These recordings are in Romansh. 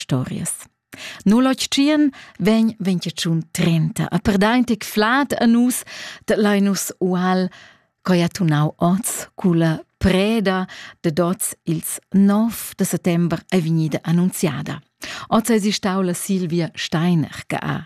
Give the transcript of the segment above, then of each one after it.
stories. Nu lotschien vegn ventecun trenta a perdaintic flat a nus de Linus Ual, coi ha tunau oz culla preda de dots ils 9 de settember è vegnida annunziada. Oz è si stau la Silvia Steiner che ha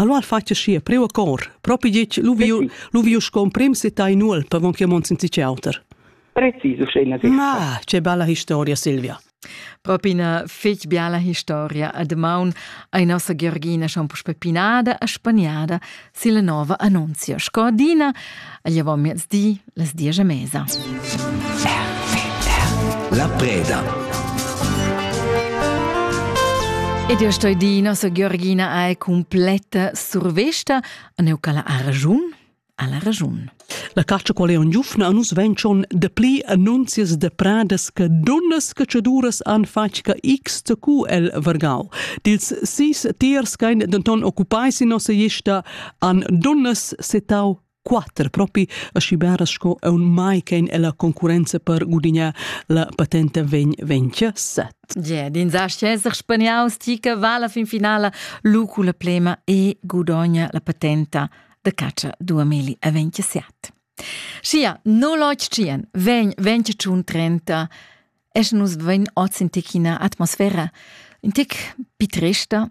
Allora al fatg schi preu a cor, propi ditg lu viu lu viu sco emprim se tai nuol per von che mon senza ciauter. Preciso scena di. Ah, che bella historia Silvia. Propi una fetg biala historia a de maun ai nossa Georgina Schampus Peppinada a Spaniada silla nova annunzia. Sco adina, a gliavo miezdi las diesch a mesa. La preda. Ed io sto di, nossa Georgina è completa survesta, a neu cala a ragiun, alla ragiun. La caccia qual è un giufna a nus veng schon de pli annunzias de pradas che dunnas cacciaduras han fatg che x cu el vargau. Dils sis tiers kein denton occupai si nossa gista an dunnas setau quatter propi aschi beras sco aun mai ch'ein ella concurrenza per gudignar la patenta vegn ventia set. Yeah, din sa esser spaniaus ti che va la fin finala lu cu la plema e gudogna la patenta de caccia 2027. Sia, no loch tschien, vegn, vegn tschun trenta, es nus vegn oz in tecina atmosfera, in tec pitresta,